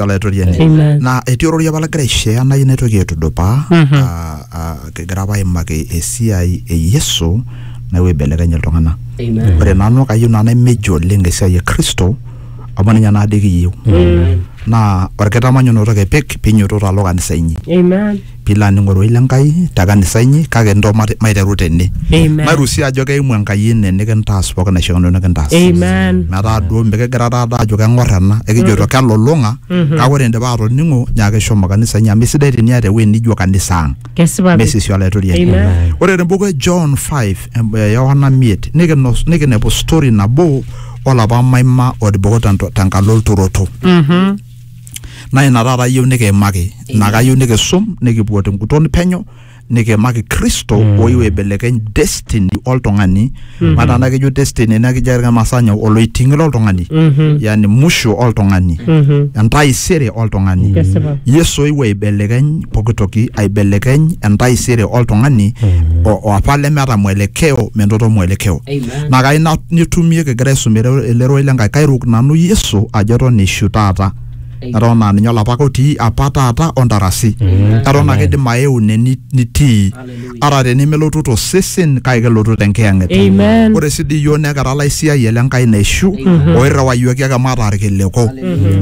olaitoriani Amen. naa etii ororei apa lagira aishea nayieu naitoki aitudupaa Mhm. ah, ah, kigira apa aimaki esiai e yesu naewuo aibelekeny iltung'anak Amen. ore nanu kayieu naa naimeji oleng esiai e kristo amu ninye naa dii kiyieu naa orkitamanyunoto kipik pinyototo alo kanisa inyi Amen. piilo aning ororei le Nkai te kanisa inyi kake ntoo mate- maiteru tene Amen. mairusia ajo keimu Enkai ene nikintaas pooki naishiakino nikintaas Amen. metaa duo mikigira taata ajo keng'or ena ekijoito kelulung'a kake ore indipa atoning'o nyaaki shomo kanisa inyi amu isidai teniata ewueji nijo kanisa ang Kesipa pi. mesisi olaitoriani Amen. ore tembuku e John 5 em- eh, Yohana 5 nikinos- nikinepu story nabo olapa maima otiboko tento- tenkalo olturoto Mhm. naa ina taata ayieu nikiimaki naa kayieu nikisum nikipuo tenguton penyo nikiimaki kristo mm. oyieu aibelekeny destiny oltung'ani mm -hmm. mataa naa kejo destiny naa kijo irmaasai nyoo oloiting'i loltung'ani mm -hmm. yani musho oltung'ani mm -hmm. entaisere oltung'ani yes, yesu oyieu aibelekeny pokitoki aibelekeny entaisere oltung'ani mm -hmm. oapa lemeeta mwelekeo menoto mwelekeo naa kayieu na- nitumie kigira aisum ele ele rorei le Nkai kairuk nanu Yesu ajo eton eishu taata eton aa ninye olapake otii apa taata o ntarasi eton ake idim aeu ine ni- nitii ata tenemelotu tosesen kake kelotu tenkiyang'et Amen. ore sii dii iyiook nekira laisiayia le Nkai naishu oirriwayioki ake mataa irkiliku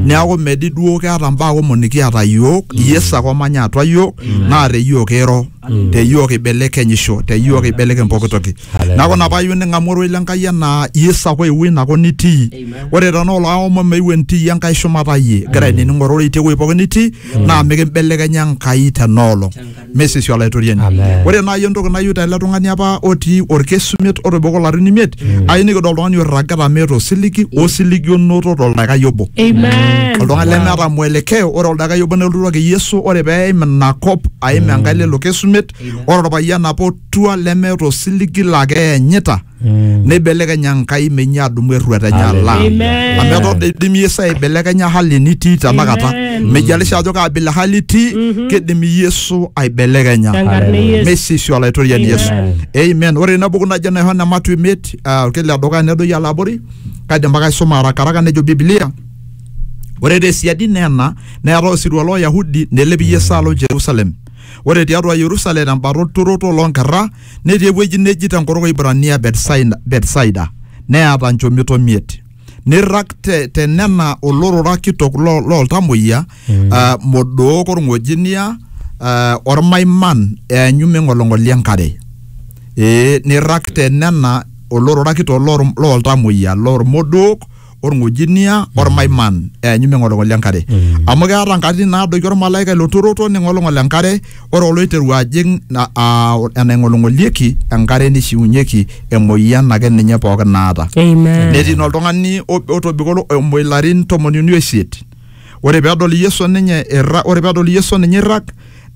neeku medi duo keeta mbaa kumok nikiata iyiook Yesu ake omanya atua iyiook naa te iyiook eiro te iyiook eibelekenyisho te iyiook eibelekeny pooki toki neeku ina paayieu ning'amu oroi le Nkai enaa Yesu ake oewuo ina kop nitii ore tenaa olaomon meeu entiiyie Enkai shumata iyie igira ainining ororei te wuei pooki nitii naa mikimbelekenya Enkai tena olong mesesio olaitoriani ore naaji entoki nayieu tele tung'ani apa otii orkesi omiet otobiko ilarin imiet ayieu nikidol oltung'ani oirragita meeta osiligi osiligi onoto toldakikai obo oltung'ani lemeeta mwelekeo ore Enkai obo nelotuaki Yesu ore pee eim ina kop aim Enkai lelo kesumet ore orpayian apa otua lemeeta osiligi laa keyanyita neibelekeny Enkai menyi adumu erruat enye ala Amen. amu eton doi idim Yesu aibelekenya hali nitii tenakata Amen. mejalisha ajo kaa bila hali itii kidim Yesu aibelekenya Tenkarna e Yesu. mesisi olaitoriani Yesu Amen. amen ore ina buku najo naihon ematu imiet ah, orkila edukuya nedoyio alo abori kaidim ake aisuma arakaraka nejo Biblia Ore te siadi nena neetae osirua loo Yahudi nelepi Yesu alo Jerusalem. Ore tiatua Yerusalem tembata olturoto loo nkerra netii ewueji neji tenkutuk o Ibrania Betsaida neeta nchomito miet. Neirrag te, te nena olorora kitok lo, loo ltamoyia uh, modook olng'ojinia uh, olmaiman eanyu meing'oling'oli enkare. Ee neirrag te nena olorora kitok loo ltamoyia loo lmodook orng'ojinia ormaiman eanyu meng'olong'ol enkare amu keeta nkatitin naadoiki ormalaika ilo turoto ning'olong'ol enkare ore oloiteru ajing na- aa, enaing'olong'olieki enkare nishiunyeki emoyian ake ninye pookin naata Amen. netii naa oltung'ani ob- otobiko olo- omo ilarin tomoni uni oisiet ore pedol yesu ninye irra ore pedol yesu ninye irrag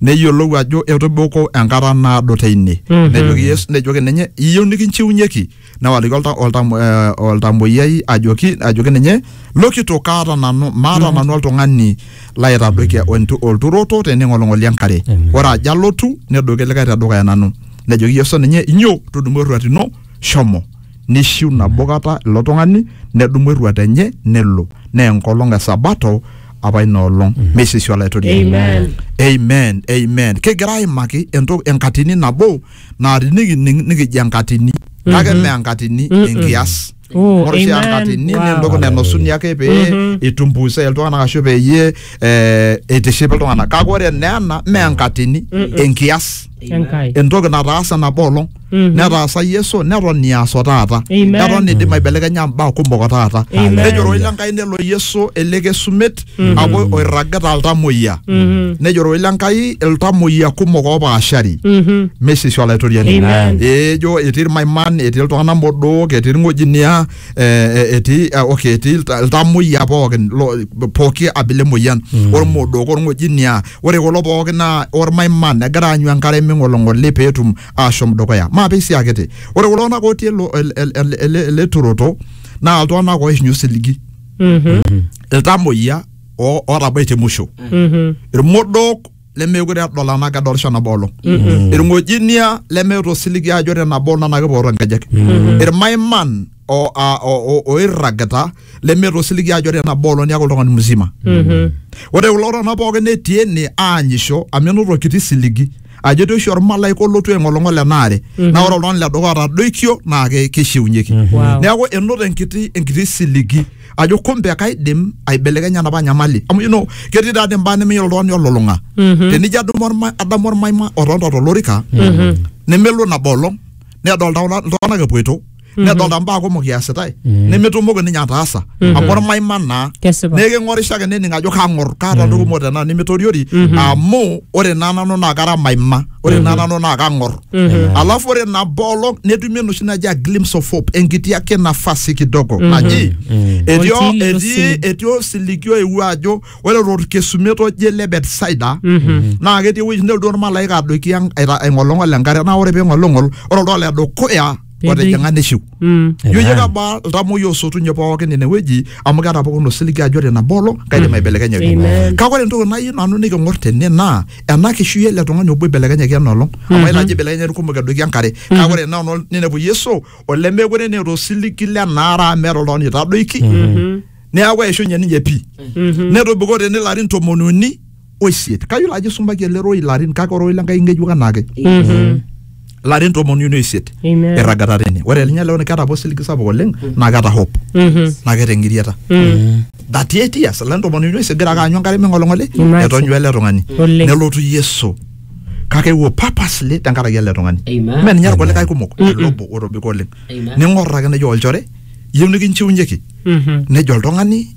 neyiolou ajo etobiko enkata naado teine nejoki yesu nejoki ninye iyieu nikinchiunyeki newaliki olta- oltam- eh, oltamoyiai ajoki ajoki ninye lokito kaata nanu maata nanu oltung'ani laitadoikia oltu- olturoto tening'oling'oli enkare Amen. ore ajo alotu nedoki likae tedukuya nanu nejoki yesu ninye inyo tudumu erruat ino shomo nishiu nabo kata ilo tung'ani nedumu erruat enye nelo naa enkolong e sabato apa ina olong meisishu olaitoriani Amen. amen amen kigira aimaki entoki enkatini nabo naa tinikining nikijo enkatini kake mme enkatini enkias Oh, ore oshi amen. enkatini Wow. naa entoki nainosuni ake pee itumbuisai iltung'anak ashu peyie eh, eitiship iltung'anak kake ore naa ena mme enkatini enkias Enkai. entoki nataasa nabo olong Mhm. netaasa yesu neton iaso taata Amen. eton idim aibelekenya mbaa kumok o taata Amen. nejoroi lenkai nelo yesu ele kesumet amu oirragita iltamoyia nejo ororei le Nkai iltamoyia kumok oopaashari mesisi olaitoriani Amen. ejo etii irmaiman etii iltung'anak modook etii irng'ojinia eh, eh, etii eh, okay etii ilta- iltamoyia pookin lo- pooki abila emoyian ormodook orng'ojinia ore kulo pookin naa ormaiman egira aanyu enkare ming'olong'oli peetum ashom dukuya maape esiai kiti ore kulo tung'anak otii ele- ele- ele- ele- ele turoto naa iltung'anak oishinyu osiligi Mhm. iltamoyia o- ootabaitie musho Mhm. irmodook lemeekure edol anaa kedolisho enabo olong irng'ojinia lemeeta osiligi ajo ore nabo olong naa kepooro nkejek irmaiman o- a- o- o- oirragita lemeeta osiligi ajo ore nabo olong niaku oltung'ani mzima Mhm. ore kulo tung'anak pookin netii ene aanyisho amu enoto kiti siligi ajo etii oshi ormalaika olotu aing'olong'ol ena are naa ore oltung'ani le dukuya otadoikio naa ke- keishiunyeki Wow. neeku enoto enkiti enkiti siligi ajo kumbe kaidim aibelekenya enapa nyamali amu you know ketii taadii imbaa nemeyiolo oltung'ani olulung'a tenijo adumu orma- adamu ormaima otonta tolorika nemelo nabo olong nedolta kuna- iltung'anak epuoito nedolta mbaa kumok iasitae nemetumoki ninye ataasa amu ormaima naa Kesipa. neeku king'orisho ake nening ajo kang'or kaata entoki kumok tenaa nimitoriori amu ore naa nanu naa kara maima ore naa nanu naa kang'or alafu ore nabo olong netumi enoshi naji a glimpse of hope enkiti ake nafasi kidogo naji etii o- Olchili etii losilig. etii osiligi oewuo ajo ore torkesumet oje le betsaida naa ketii ewueji nelotu ormalaika adoiki ang- aita- aing'olong'ol enkare naa ore ping'olong'ol ore oltau le dukuya otijing'a neshiu Mm. ijo Amen. kebaa iltamoyia osotunye pookin inewueji amu keeta pookin osiligi ajo ore nabo olong kaidim aibelekenya ewueji Amen. kake ore entoki nayieu nanu niking'or tene naa ena kishui ele tung'ani obo ibelekenyaki ena olong amu aitajo ibelekenya irkumok edoiki enkare kake ore ena olong ninepu yesu olemekure neeta osiligi lenaara amu meeta oltung'ani oitadoiki neeku eishunye ninye pii netobiko tene ilarin tomoni uni oisiet kayiolo ajo isumbaki ele rorei ilarin kake ororei le Nkai ng'ejuk anaake ilarin tomon uni oisiet Amen. irragata tene ore ninye leo keeta apa osiligi sapuk oleng naa keeta hope naa keeta eng'iriata that eight years ilarin tomon uni oisiet egira ake aanyu enkare ming'oling'oli Imagine. etonyua ele tung'ani Oleng. nelotu Yesu kake eewuo purposely tenkaraki ele tung'ani Amen. mme ninye irkulikae kumok ele obo otobiko oleng Amen. ning'or ake nejo olchore iyieu nikinchiunyeki nejo oltung'ani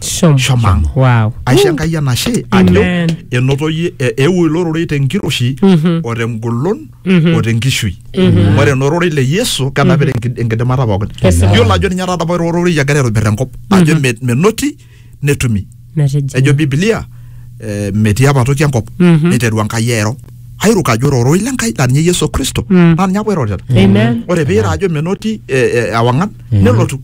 Shom. shomo ang Wow. aisho enkai enashe ajo Amen. enoto yie- e- eewuo ilo rorei tenkiroshi o tengolon o tenkishui Amen. ore ena ororei le yesu kenapita enki- enkidimata pookin Kesipa. yiolo ajo ninye taata apa ilo rorei egira aitobir enkop ajo me- menoti netumi Metijing'a. ejo bibilia eh, metii apa toki enkop Mhm. neiteru enkai airo airuk ajo ore ororei lenkai laa ninye yesu kristo Mm. naa ninye apa oirorita Amen. ore piira ajo menoti eh, eh, ewang'an nelotu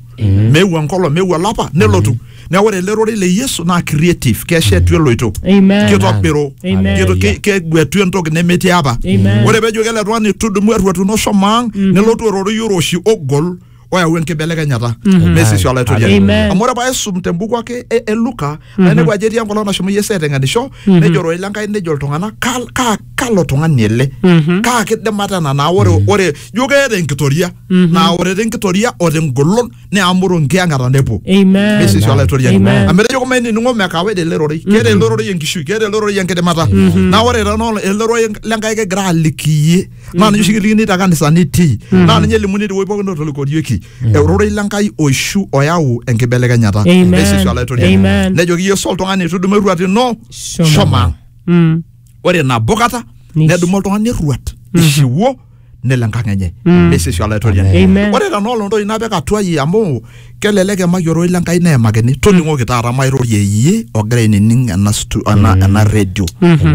meewuo enkolong meewuo olapa nelotu neeku ore ele rorei le yesu naa creative keshetu eloito Amen. kitobiru Amen. Kito- ke- keguetu entoki nemetii apa Amen. ore pejoki ele tung'ani tudumu erruatuno shomo ang nelotu ororei oroshi ogol oyau enkibelekenyata mesisi olaitoriani Amen. amu ore paisum tembuku ake e, e luka naa inepu ajo etii enkolong nashomo Yesu aiteng'enisho nejo ororei lenkai nejo iltung'anak "Ka- ka- kalo tung'ani ele Mhm. kaa kidimata ena naa ore ore ijo keeta enkitoria naa ore te nkitoria o te ngolon neamuru enkiyang'ata nepuo Amen. mesisi olaitoriani Amen. amu etejo kumai nining'o mekawa ele rorei keeta ele rorei enkishui keeta ele rorei enkidimata naa ore tena olong ele rorei lenkai kigira aliki iyie naa ninye oshi kilikini te kanisa nitii naa ninye elimuni tewueji pookin otolikorieki eurorei le Nkai oishu oyau enkibelekenyata Amen. Neisishu olaitoriani. Amen. nejoki Yesu oltung'ani etudumu erruat ino Shomo. shomaa Mm. ore nabo kata Nish- nedumu oltung'ani erruat ishiwuo nelo enkang enye neisishu olaitoriani Amen. ore tenaa olontoki napik atua iyie amu Kelelek emaki ororei le Nkai neemakini. Toling'oki taata mairorie iyie ogira ainining ena stu, ena, ena redio.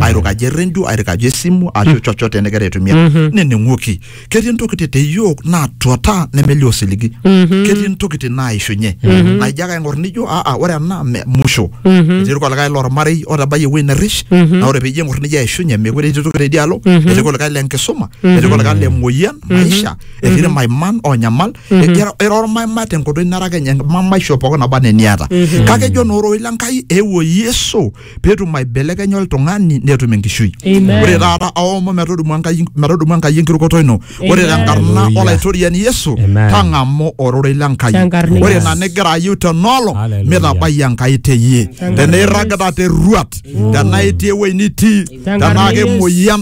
Airukaki eredio, airukaki esimu, ashu chochote nigira aitumia. Nining'oki. Ketii ntokitin te iyiook naatuata nemelio osiligi. Ketii ntokitin naaishunye. Naa ijo ake aing'or nijo aa ore ena me musho. Etii irkulikae lormarei otabayie ewuei nerrish. Naa ore piijo aing'or nijo eishunye meekure etii toki teidia alo. Etii kulikae le nkisuma. Etii kulikae le muoyian, maisha. Etii ilmaiman oonyamal. Ira- ira ormaima tenkoitoi nara kenya mamaisho pookin naba anaa eniata kake ejo naa ororei le nkai eewuo yesu peetum aibelekenya oltung'ani netum enkishui Amen. ore taata aomon metodumu enkai metodumu enkai enkirukoto ino ore Amen. tenkarna Hallelujah. olaitoriani yesu Amen. tang'amu ororei le nkai Tenkarna ore Yesu. ina nigira ayieu tenolong Hallelujah. mitabai enkai teyie tenaa irragita te ruat tenaa itii ewuei nitii Tenkarna tenaa Yesu. kemuoyian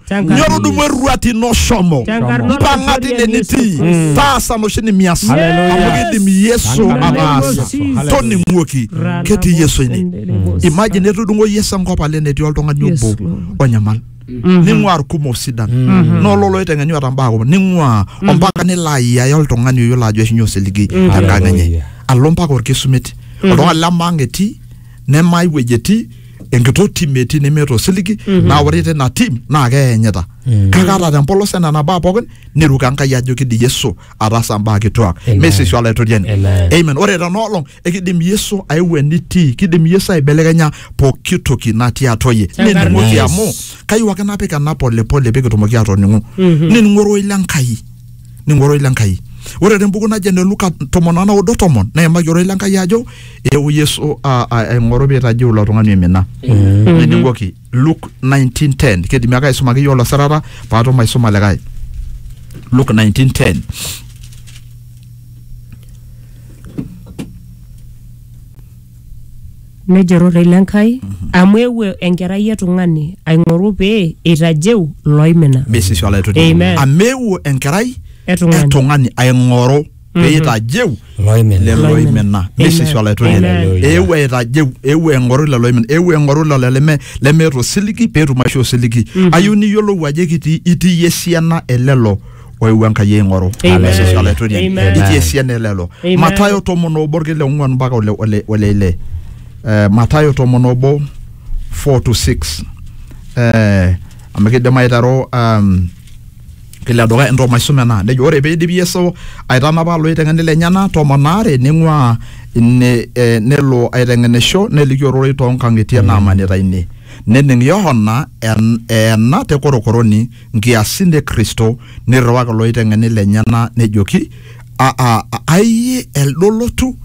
Tenkaraki- nyoo tudumu erruat ino shomo Tenkaraki mpang'a tine Yesu nitii Kristo. taasa noshi nimias Hallelujah. amu kidim yesu Tenkaraki ataasa Yesu. toning'uoki Rana ketii yesu ine Bosendere Bosa. imagine etudung'o yesu enkop ale netii oltung'ani Yes, obo Lord. onyamal ning'ua irkumok sidan nololo oiteng'enyu ata mbaa kumok ning'ua ompaka nilo ayiaya oltung'ani oyiolo ajo eishunye osiligi tenkang enye Hallelujah. alo mpaka orkesumet oltung'ani lemaang etii nemai wueji etii enkitoo tim etii nemeeta osiligi naa ore tina tim naa keyanyita kake ata tempolos enena baa pookin neiruk enkai ajo kidim yesu ataasa mbaa kituak Amen. mesisho olaitoriani Amen. amen ore tena olong ekidim yesu aeu enitii kidim yesu aibelekenya pooki toki natii atua yie Tenkarna nining'oki Yesu. amu kayieu ake napik ena polepole pee kitumoki atoning'u nining'u ororei le nkai ningo ororei le Nkai. Ore te mbuku naji ene Luka tomon o naudo tomon neimaki ororei le Nkai ajo eewuo Yesu a- a- aing'oru peitajeu ilo tung'ani oimina. Nining'oki Luke 19:10 keidimi ake aisumaki iyiook ilo sirata paatum aisuma likae. Luke 19:10 Nejo rorei le Nkai, amu eewuo Enkerai e Tung'ani aing'oru pee eitajeu looimina. Misisi olaitoriani. Amen. Amu eewuo enkerai E tung'ani. e tung'ani aing'oru pee eitajeu Looimina. lelo oimina. Misisi Amen. olaitoriani. Amen. Eewuo aitajeu, eewuo aing'oru lelo oimina, eewuo aing'oru lelo leme lemeeta osiligi pee etum aisho osiligi. Ayieu niyiolou ajo ekitii itii iyie esiana e lelo oewuo enkai aing'oru Amen. Yesus olaitoriani Amen. itii esiana elelo Amen. matayo tomon obo orkil le ong'uan mpaka ole- ole ole ile Eh, matayo tomon obo 4 to 6 Eh, amu kidim aiteru um, kila duka ento maisum ena nejo ore peidip yesu aitanapa loiteng'eni lenyena tomon aare ning'ua ine eh, nelo aiteng'enisho neliki ororei toonkang'itie naamanita ine nening yohana en- eena te korokoroni nkiasin e Kristo, neirriwaki ilooiteng'eni lenyena nejoki, "A- a- a- Aiye elde olotu,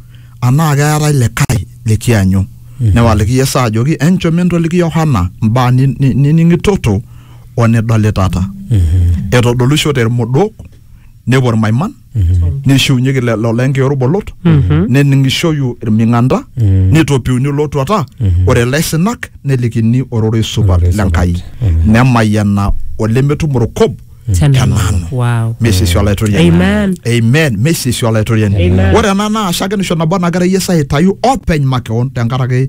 anaa keetae likae likianyu? Newaliki Yesu ajoki, Enchom entoliki Yohana mbaa ni- ni- nining'itoto o nidolitata. Etodolishote ilmodok, nepuo ilmaiman, neishiunyeki lelo lenke olbolot nening'ishoyu ilming'anda neitopiuni olotuata ore ilaisinak nelikini ororei supat Ororei supat. lenkai Amen. nemayiana olemetum orkob Tenanu. tenanu Wow. mesisi olaitoriani Amen. amen mesisi olaitoriani ore ena naa shakenisho nabo nagira yesu aitayu openy makeon tenkaraki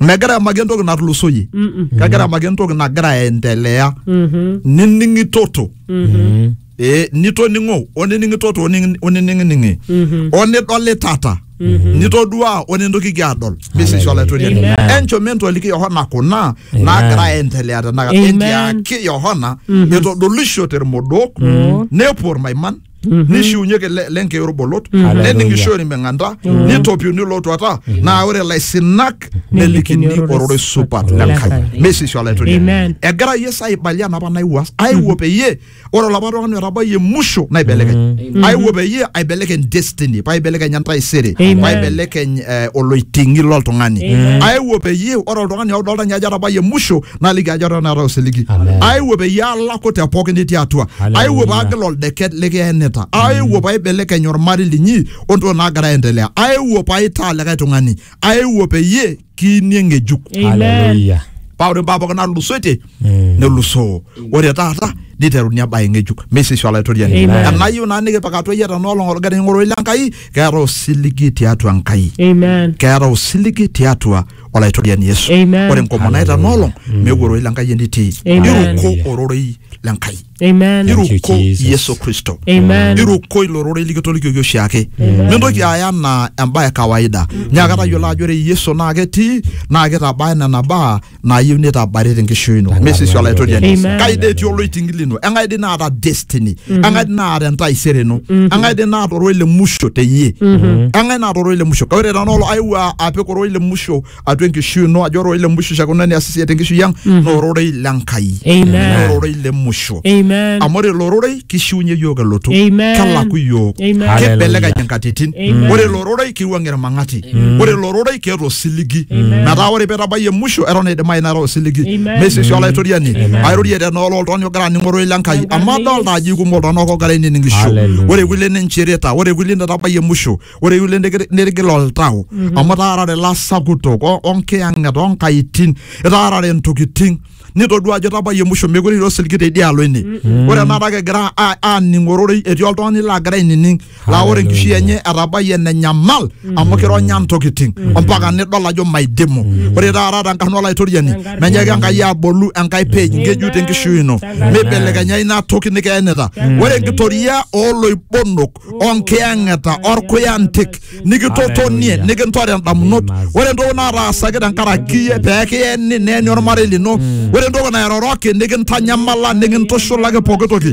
megira amaki entoki natulusoyie kegira amaki entoki nagira aendelea nining'itoto Eh, nitoning'o onining'itoto oning- onining'ining'i onidolitata nitoduaa onintokiki adol bisishi olaitoriani Amen. enchom entoliki yohana kuna naagira aendelea tenakata Amen. entiaki yohana etodolishote irmodok nepuo irmaiman nishiunyie le- lenkeyi orbolot Hallelujah. neningisho irmeng'anta nitopiuni lootuata naa ore laisinak nelikini Nelikini ororei supat le Enkai Enkai. mesisho Amen. olaitoriani egira yesu aibalia napa naiwuas aiwuo peyie ore olapa tung'ani otabayie musho naibelekeny aiwuo peyie aibelekeny destiny paibelekeny entaisere Amen. paibelekeny eh, oloiting'i loltung'ani aiwuo peyie ore oltung'ani odolta ninye ajo atabayie musho naliki ajo eton eeta osiligi Amen. aewuo peyie alaku te pookin nitii atua Hallelujah. aewuo paagil oldeket likiyenita aewuo paibelekeny ormarei linyi ontoki naagira aendelea aewuo paitaa likae tung'ani aewuo peyie kiinie ng'ejuk Amen. Hallelujah. paa ore mbaa pookin natulusoitie Mm. nelusoo ore taata niteruni embae ng'ejuk meisisho olaitoriani Amen. enayieu naa nikipik atua iyie tenoolong olgari ng'oroi le Enkai keeta osiligi tiatua Enkai Amen. keeta osiligi tiatua olaitoriani yesu Amen. ore enkomono naita nolong meeku ororei le nkai enitii Amen. iruko ororei le nkai Amen. Thank you, iruko Jesus. yesu kristo Amen. iruko ilo rorei likitolikioki oshiake mintoki aya anaa embae e kawaida nyaaka tayiolo ajo ore yesu naa ketii naa kitabaya nena baa naayieu nitabari tenkishui ino mesisi olaitoriani Amen. kai dei etii oloiting'ili ino eng'ae dei naata destiny eng'ae dii naata entaisere ino eng'ae dii naata ororei le musho teyie eng'ae naata ororei le musho kake ore tenaa olo aewuo a- apik ororei le musho atua enkishui ino ajo ororei le musho shakuna nias esiai tenkishui ang naa ororei le Nkai Amen. Naa ororei le musho Amen. amu ore ilo rorei kishiunye iyiook elotu Amen. kelaku iyiook Amen. kibelekeny inkatitin Amen. ore ilo rorei kiwuang irmang'ati ore ilo rorei keeta osiligi metaa ore pitabayie musho eton eidimayu neeta osiligi Amen. mesisi olaitoriani airorie tenaa olo oltung'ani ogira aning'oro ile Enkai Enkarna amu e adolta Yesu. ajo ikumok iltung'anak ogira aininingisho Hallelujah. ore kulie ninchirita ore kulie netabayie musho ore kulie nigir- nirgil oltau amu etaarare ilasakutok o- onkiyang'et onkaitin etaarare ntokiting nitodua ajo etabayie musho mekure etii osiligi teidialo ine ore enakata kigira a- aaning'ororei etii oltung'ani lagira ainining laa ore enkishui enye etabayie enenyamal amu kironya ntokitin ompaka nidol ajo maidimu ore taata tenkarna olaitoriani menyaaki enkai abolu enkai page ngejuk tenkishui ino meibelekenya ina toki nikeenita ore enkitoria ooloibonok onkiyang'eta orkuyantik nikitotonie nikintore indamunot ore entoki nataasaki tenkaraki iyie pee kiyeni neeni ormarei lino ore entoki nairoroki nikintanyamala nikintushulaki pooki toki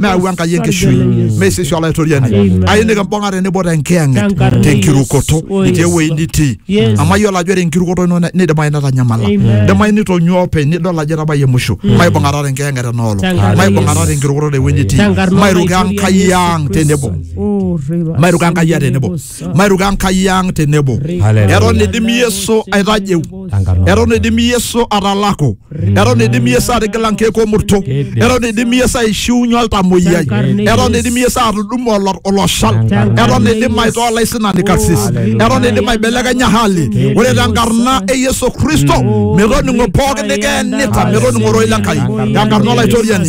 nayau enkai enkishui mee sisi olaitoriani ailiki mbung'a tenebo tenkiyang'et Tenkarna tenkirukoto Yesu. Oh, itii Yesu. ewueji nitii Yes. amu ayiolo ajo ore enkirukoto ino ne- nidimayu netanyamala Amen. idimayu nitonyua openy nidol ajo etabayie musho maibung'ata tenkiyang'et enoolong Tenkarna maibung'ata Yesu. tenkirukoto tewueji nitii Tenkarna mairuko enkai Olaitoriani ang Yesu tenebo Kristo. Oh, reba mairuko enkai ang sende tenebo lebo mairuka Enkai ang tenebo. Hallelujah. Eton eidim Yesu aitajeu, Tankarna. eton eidim Yesu atalaku, eton eidim Yesu atigila nkeek omurto, Keidim. eton eidim Yesu aishiunye oltamoyiai, Tankarna eton Yesu. eidim Yesu atudumu olo- oloshal, Tankarna eton eidim Yesu. aitoo olaisinani karsis, Hallelujah. eton eidim aibelekenya hali. Keidim. Ore tenkarna e Yesu Kristo, metoning'o pooki nikeenita, metoning'o ororei le Enkai, Tankarna tenkarna Yesu. olaitoriani.